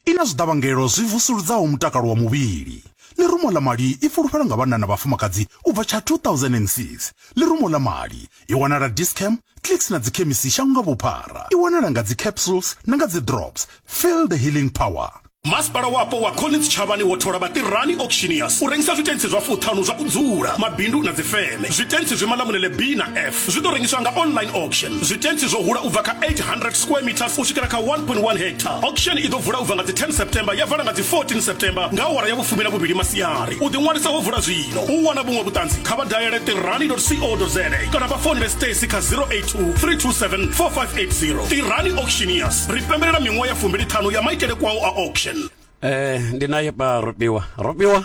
I na zwiḓavhangelo zwi vusuludzaho mutakalo wa muvhili. Ḽirumo ḽa mali i fulufhela nga vhanna na vhafumakadzi u bva tsha 2006. Ḽirumo ḽa mali i wanala Dis-Chem, Clicks na dzikhemisi shango nga vhuphara. I wanala nga dzi-capsules na nga dzi-drops. Feel the healing power. Masipala Wapo wa Collins Tshavhani wo thola Vhaṱirani Auctioneers u rengisa zwitentsi zwa fuṱhanu zwa u dzula, mabindu na dzifeme. Zwitentsi zwi Malamulele B na F. zwi ḓo rengiswa nga online auction zwitentsi zwo hula u bva kha 800 square meters u swikela kha 1.1 hectare auction i ḓo vula u bva nga dzi 10 september ya vala nga dzi 14 september nga awara ya vhufumi na vhuvhili masiari u ḓiṅwalisa ho vula zwino u wana vhuṅwe vhuṱanzi kha vha dalele tirani co za kana vha founele stacy kha 082 327 4580 tirani auctioneers ri pembelela miṅwaha ya fumbili ṱhanu ya maitele kwao a auction eh ndi naye pa ropiwa ropiwa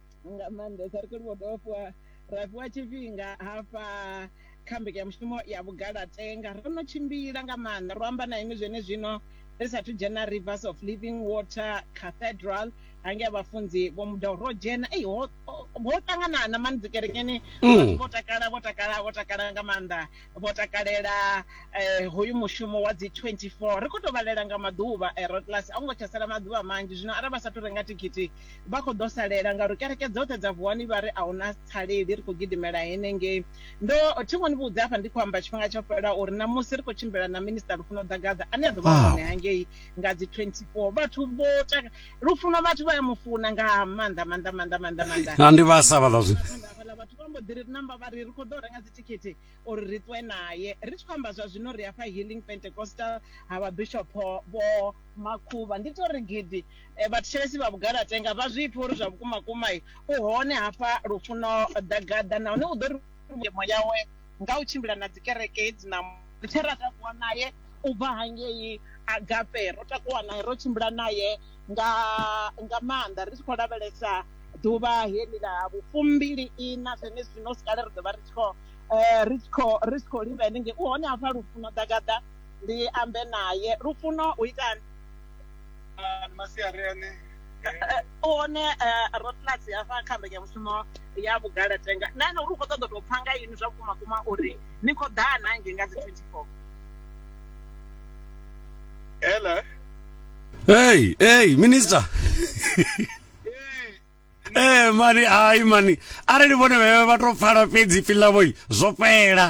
nga maanḓesa ri khou livhuwa dovha fhiwa ra fhiwa tshifhinga hafha kha mbekanyamushumo ya vhugalatenga ro no tshimbila nga maanḓa ro amba na inwi zwene zwino ri sathu dzhena rivers of living water cathedral hange a vhafunzi vho mudau ro dzhena ei ho ho ṱanganana mani dzikerekeni mm. vho takala vho takala vho takala nga maanḓa vho takalela eh, hoyu mushumo wa dzi 24 ri khou tou vhalela nga maḓuvha eh, rotlas a u ngo tsha sala maḓuvha manzhi zwino arali vha sathu renga thikhithi vha khou ḓo salela ngauri kereke dzoṱhe dza vuwani vha ri a hu na tsaleli ri khou gidimela henengei. Ndo thi ngo ni vhudza hafha ndi khou amba tshifhinga tsho fhelaho uri ṋamusi ri khou tshimbila na Minisṱa Lufuno Ḓagaḓa ane a ḓo vha ah. hone hangei nga dzi 24 vhathu vho taka Lufuno vhathu vha ya mu funa nga maanḓa maanḓa maanḓa maanḓa maanḓa. Na ndi vhasa vhaḽa zwi. Vhathu vha mbo ḓi ri namba vha ri ri khou ḓo renga dzithikhithi uri ri ṱwe nae. Ri tshi khou amba zwa zwino ri hafha Healing Pentecostal ha Vhabishop Vho Makhuvha. Ndi tou ri gidi vhathetshelesi vha Vhugalatenga vha zwi pfe uri zwa vhukumakuma u hone hafha Lufuno Ḓagaḓa nahone u ḓo ri tshenzhemo yawe nga u tshimbila na dzikereke hedzi na musi tshe ra takuwa nae u bva hangei Agape. Ro takuwa nae, ro tshimbila nae nga nga maanḓa ri tshi khou lavhelesa ḓuvha heḽi ḽa vhufumbili-iṋa zwenezwino. Hu si kale ri ḓo vha ri tshi khou. eh, ri tshi khou ri tshi khou livha henengei u hone hafha lufuno ḓagaḓa ndi ambe naye lufuno u itani ah, masiari ane eh, eh, u hone rotlasi hafha kha mbekanyamushumo ya vhugala tenga na ene uri u khou ṱoḓa tou pfha nga ini zwa vhukuma kuma uri ni khou ḓaa na nge nga dzi 24 hello hey hey minister ee mani hai mani arali vhone vhevhe vha to pfala fhedzi pfi ḽavho zwo fhela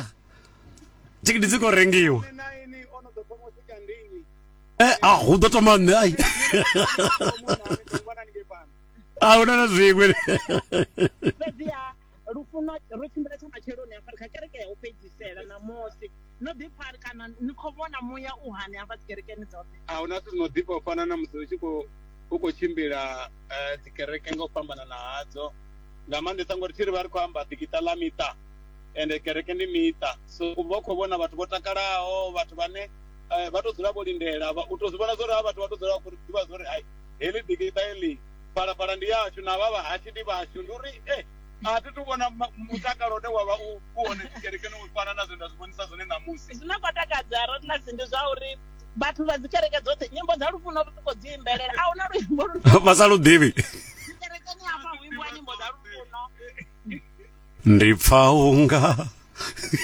thikiti dzi khou rengiwa eh, a ah, hu ḓo thoma nṋe ai a ah, hu na na zwiṅwe lufuno ro tshimbila tsha matsheloni hafha kha kereke ya u fhedzisela ṋamusi no ḓipfa kana ni khou vhona muya u hani hafha dzikerekeni dzoṱhe a huna zwithu zwi no ḓifha u fana na musi u tshi khou u khou tshimbila eh, dzikereke nga u fhambanana hadzo nga maanḓesa ngori thi ri vha ri khou amba ḓikiṱa ḽa miṱa ende kereke ndi miṱa so u vha u khou vhona vhathu vho takalaho vhathu vhane eh, vha tou dzula vho lindela vha- u tou zwi vhona zwo ri ha vhathu vha tou dzula vha khou ḓivha zwo ri hai heḽi ḓikiṱa heḽi phalaphala ndi yashu na vha vhahashu ndi vhashu ndi uri e a thi tu vhona ma- mutakalo une wa vha u u hone dzikerekeni u fana na zwe nda zwi vhonisa zwone ṋamusi zwine kwa takadza ratnasi ndi zwa uri vhathu vha dzi kereke dzoṱhe nyimbo dza lufuno vha khou dzi imbelela a huna luimbo lu vha sa lu ḓivhi kerekeni hafha hu imbiwa nyimbo dza lufuno ndi pfa unga